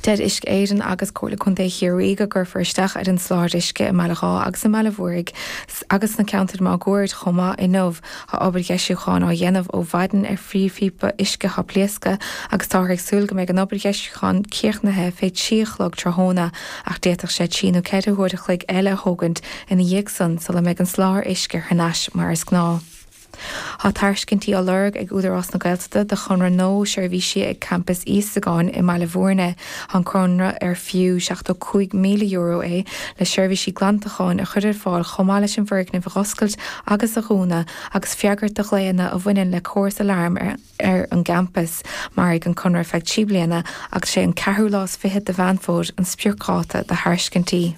Deir Uisce Éireann agus Comhairle Contae Chiarraí go gcuirfear isteach ar an soláthar uisce i mBaile Dháith agus i mBaile an Mhúraigh agus sna ceantair máguaird chomh maith inniu. Tá obair dheisiúcháin á dhéanamh ó mhaidin ar phríomhphíopa uisce atá pléasctha agus táthar ag súil go mbeidh an obair dheisiúcháin críochnaithe fé trí a chlog tráthnóna ach d'fhéadfadh sé trí nó ceithre huair a chloig eile a thógaint ina dhiaidh san sula mbeidh an soláthar uisce thar n-ais mar is gnáth. Tá tairiscintí á lorg ag Údarás na Gaeltachta do chonradh nua seirbhísí ag Campas Íosagáin i mBaile Mhúirne. Tá an conradh ar fiú €75,000 é le seirbhísí glantacháin a chur ar fáil chomh maith leis an bhfoirgneamh a dh'oscailt agus a dhúnadh agus freagairt do ghlaonna a bhaineann le córas aláraim ar an gcampas. Mairfidh an conradh ar feadh trí bliana agus is é an ceathrú lá is fiche de Mheán Fómhair an spriocdháta do thairiscintí.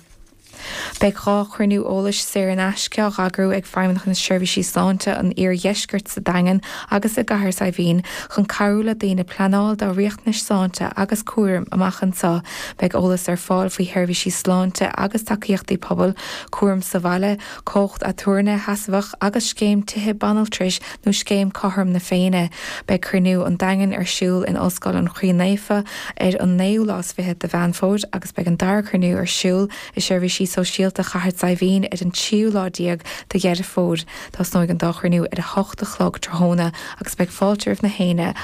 Beidh dhá chruinniú eolais saor in aisce á heagrú ag Feidhmeannacht na Seirbhísí Sláinte an Iardheiscirt sa Daingean agus i gCathair Saidhbhín chun cabhrú le daoine pleanáil dá riachtanais sláinte agus cúraim amach anseo. Beidh eolas ar fáil faoi sheirbhísí sláinte agus tacaíochtaí pobail, cúram sa bhaile, cumhacht aturnae sheasmhach agus scéim tithe banaltrais nó Scéim Cothrom na Féinne. Beidh Cruinniú an Daingin ar siúl in Ollscoil an Chroí Naofa ar an naoú lá is fiche de Mheán Fómhair agus beidh an dara cruinniú ar siúl i Seirbhísí Sóisialta Chathair Saidhbhín ar an tríú lá déag de Dheireadh Fómhair. Tosnóidh an dá chruinniú ar a hocht a chlog tráthnóna agus beidh fáilte roimh na héinne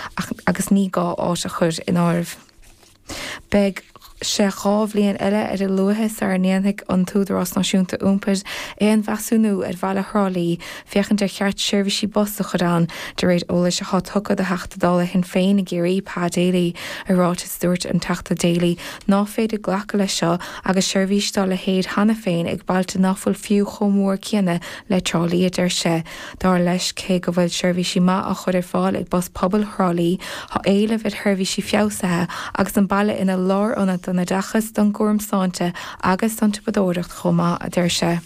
agus ní gá áit a chur in áireamh. Beidh sé dhá bhliain eile ar a luaithe sara ndéanfaidh an tÚdarás Náisiúnta Iompair aon mheasúnú ar bhaile Thrá Lí féachaint ar cheart seirbhísí bus a chur ann, de réir eolais atá tugtha do Theachta Dála Shinn Féin i gCiarraí, Pa Daly. I ráiteas dúirt an Teachta Daly ná féidir glacadh leis seo agus seirbhís dá leithéid cheana féin ag bailte ná fuil fiú chomh mór céanna le Trá Lí, a deir sé. Dar leis cé go bhfuil seirbhísí maith á chur ar fáil ag Bus Pobail Thrá Lí, tá éileamh ar sheirbhísí feabhsaithe agus an baile ina lárionad don oideachas, don gcúram sláinte agus don tsiopadóireacht chomh maith, a deir sé.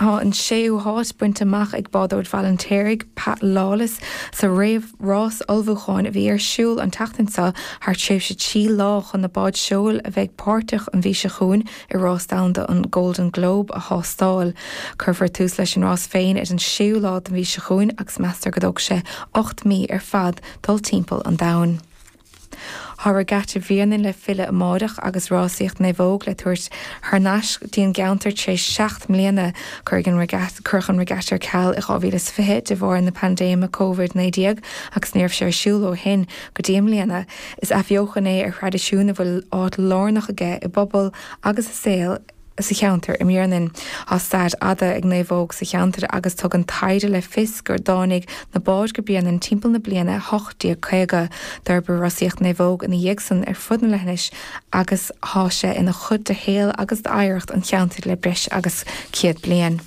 Tá an séú háit bainte amach ag bádóir Bhaile an Fheirtéaraigh, Pat Lawless, sa réamhrás ullmhúcháin a bhí ar siúl an tseachtain seo thar tréimhse trí lá chun na báid seoil a bheidh páirteach an mhí seo chugainn i Rás Domhanda an Golden Globe a thástáil. Cuirfear tús leis an rás féin ar an 6ú lá den mhí seo chugainn agus meastar go dtógfaidh sé ocht mí ar fad dul timpeall an domhain. Tá Regatta Bhréanainn le filleadh amáireach agus rásaíocht naomhóg le tabhairt thar n-ais dtí an gceantar tar éis seacht mbliana. Cuireadh an Regatta ar ceal i 2020 de bharr na paindéime Covid 19 agus ní raibh sé ar siúl ó shin go dtí i mbliana. Is athbheochan é ar thraidisiún a bhfuil áit lárnach aige i bpobal agus i saol sa cheantar i mBréanainn. Tá stair fhada ag naomhóg sa cheantar agus tugann taighde le fios gur dtáinig na báid go Bréanainn timpeall na bliana 1850. D'fhorbair rásaíocht naomhóg ina dhiaidh san ar fud na leithinse agus tá sé ina chuid de shaol agus d'oidhreacht an cheantair le breis agus céad bliain.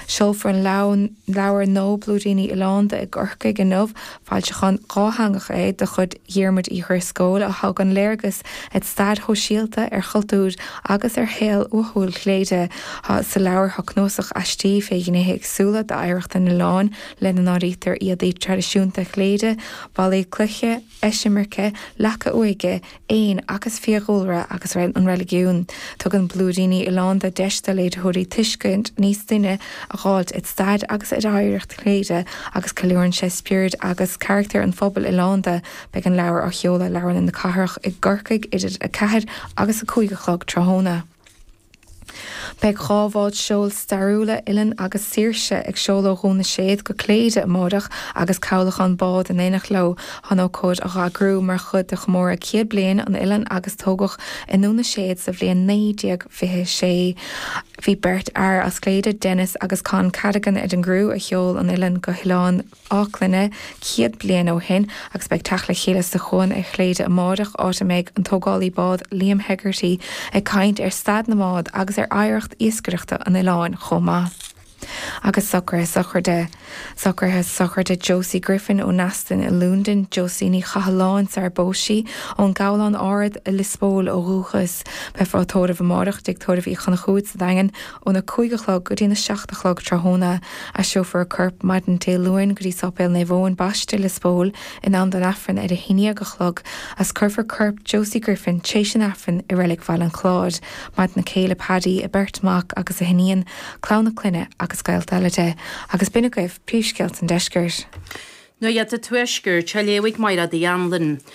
Seolfar an leabhar nua Blúiríní Oileánda i gCorcaigh inniu. Foilseachán dhátheangach é de chuid Dhiarmuid Uí Dhrisceoil a thugann léargas ar stair shóisialta, ar chultúr agus ar shaol uathúil Chléire. Tá sa leabhar seo cnuasach aistí fé ghnéithe éagsúla d'oidhreacht an oileáin, lena n-áirítear éadaí traidisiúnta Chléire, ballaí cloiche, eisimirce, leaca uaighe, éin agus fiadhúlra agus an reiligiún. Tugann Blúiríní Oileánda deis do léitheoirí tuiscint níos doimhne a dh'fháilt ar stair agus ar oidhreacht Chléire agus ceiliúrann sé spiorad agus carachtar an phobail oileánda. Beidh an leabhar á sheoladh i Leabharlann na Cathrach i gCorcaigh idir a 4 agus a 5 a chlog tráthnóna. Beidh dhá bhád seoil stairiúla, Ilen agus Saoirse, ag seoladh ó Dhún na Séad go Cléire amáireach agus cabhlachán bád in éineacht leo chun ócáid a dh'eagrú mar chuid de chomóradh céad bliain an Ilen agus tógadh i nDún na Séad sa bhliain 1926. Bhí beirt fhear as Cléire, Denis agus Con Cadogan ar an gcriú a sheol an Ilen go hOileáin Fháclainne, céad bliain ó shin agus beidh teacht le chéile sa chuan ar Chléire amáireach, áit a mbeidh an tógálaí bád Liam Hegarty ag caint ar stair na mbád agus ar oidhreacht iascaireachta an oileáin chomh maith. Agus socraithe sochraide. Socraithe sochraide Josie Griffin ó Neasden i Lúndain, Josie Ní Chathalláin sara bpós sí, ón nGabhlán Ard i Lios Póil ó dhúchas. Beifear á tórramh amáireach i dTigh Tórraimh Uí Chonchúbhair sa Daingean, Óna 5 a chlog go dtí'n 7 a chlog tráthnóna aistreofar a corp maidin Dé Luain go dtí Sáipéal Naomh Eoin Baiste, Lios Póil in am don Aifreann ar a 11 a chlog is cuirfear corp Josie Griffin tréis an Aifrinn i Reilig Bhaile an Chláir. Maireann a céile Paddy, a beirt mhac agus a hiníon, clann a clainne agus gaolta eile di. Agus b'in agaibh príomhscéalta an Deiscirt. Nuacht an Tuaiscirt á léamh ag Máiread Uí Anluain.